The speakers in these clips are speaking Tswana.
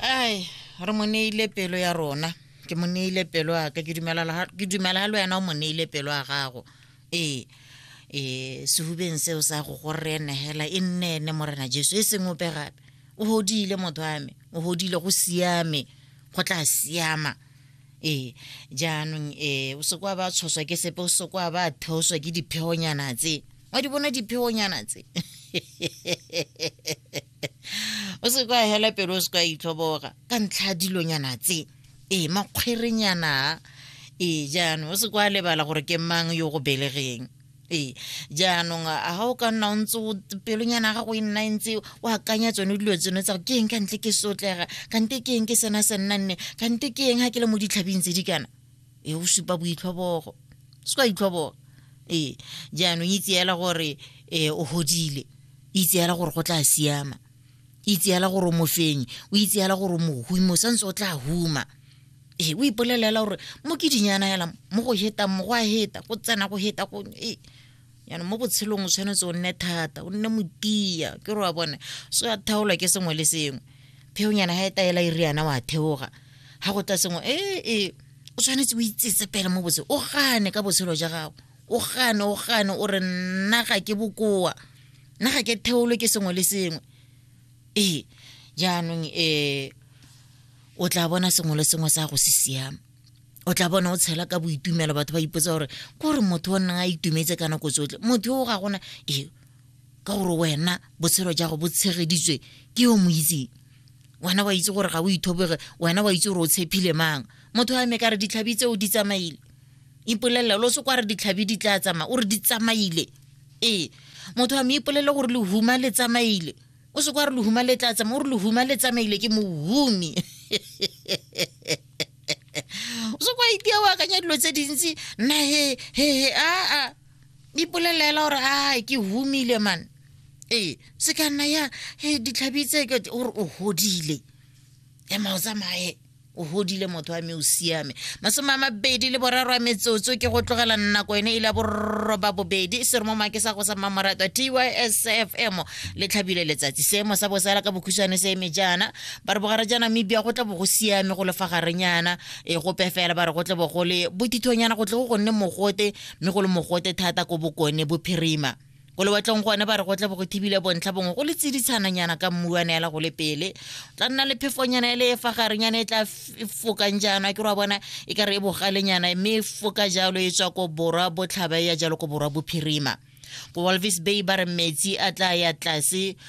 ai re mo neile pelo ya rona ke mo neile pelo ya ka ke dumela la- ke dumela ga le wena o mo neile pelo ya gago ee ee sehubeng seo sa go go rene hela e nne ene morena jesu e seng ope gape o godile motho ame o godile go siame go tla siama ee jaanong um o se kwa ba tshoswa ke sepe o se kwa ba theoswa ke dipheonyana tse wa di bona dipheonyana tse o se kwa hela pelo o se kwa itlhoboga ka ntlha dilonyana tse ee makgwerenyana ee jaanong o se kwa lebala gore ke mang yo go belegeng ee jaanong a ga o ka nna o ntse pelonyana gago e nna e ntse o akanya tsone dilo tseno tsa ke eng ka ntle ke sotlega kante ke eng ke sena se nna nne kante ke eng ga ke le mo ditlhabing tse di kana e o supa boitlhobogo se ka itlhoboga ee jaanong itse fela gore um o godile itse fela gore go tla siama itse fela gore o mofenyi o itse fela gore o mohumi o santse o tla huma ee o ipolelela gore mo ke dinyana yala mo go hetang mo go a heta go tsena go heta go ee jaanong mo botshelong o tshwanetse o nne thata o nne motia ke re wa bone so ya thaolwa ke sengwe le sengwe pheonyana ga e taela e riana wa theoga ga go tla sengwe ee ee o tshwanetse o itsetse pele mo botse o gane ka botshelo ja gago o gane o gane o re nna ga ke bokoa nna ga ke theolo ke sengwe le sengwe ee jaanong um o tla bona sengwe le sengwe sa go se siama o tla bona o tshela ka boitumelo batho ba ipotsa gore kore motho o nnang a itumetse ka nako tsotlhe motho o ga gona ee ka gore wena botshelo ja go bo tshegeditswe ke yo mo itseng wena wa itse gore ga o ithoboge wena wa itse gore o tshephile mang motho a me ka re ditlhabi tseo di tsamaile ipolelela lo se kwa re ditlhabi di tla tsamaya o re di tsamaile ee motho a me ipolele gore lehuma le tsamaile o se kwa re lehuma le tla tsamaya o re lehuma le tsamaile ke mohumi o se kwa itia o akanya dilo tse dintsi nna he he he aa ipolelela gore a ke humile man ee se ka nna ya he ditlhabi tse gore o godile ema o tsamaye o godile motho wa me o siame masome a mabedi le boraro a metsotso ke go tlogela nako ene e le ya borroba bobedi se re mo make sa go sa mmamoratwa tysfm le tlhabile letsatsi seemo sa bosala ka bokhutshwane se eme jaana ba re bogare jaana mebia go tla bo go siame go lefa garenyana e gope fela ba re go tle bo go le bothithonyana go tle go gonne mogote mme go le mogote thata ko bokone bophirima ko lewatlong gone ba re go tla bo go thibile bontlha bongwe go le tsiditshananyana ka mmu wa neela go le pele tla nna le phefonyana e le e fagarenyana e tla fokang jaana ke ra bona e ka re e bogalenyana mme e foka jalo e tswa ko borwa botlhaba e ya jalo ko borwa bophirima ko walvis bay ba re metsi a tla ya tlase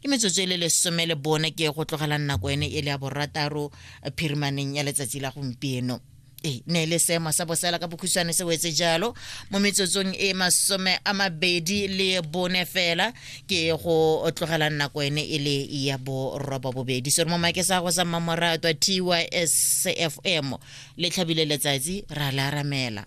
ke metsotso e le lesome le bone ke go tlogela nako ene e le ya borataro eh, phirimaneng ya letsatsi la gompieno e ne e le seemo sa bosela ka bokhutshwane se wetse jalo mo metsotsong e masome a mabedi le bone fela ke go tlogela nako ene e le ya boroba bobedi sere mo make sa go sa mmamoratwa tys cfm le tlhabile letsatsi ra le aramela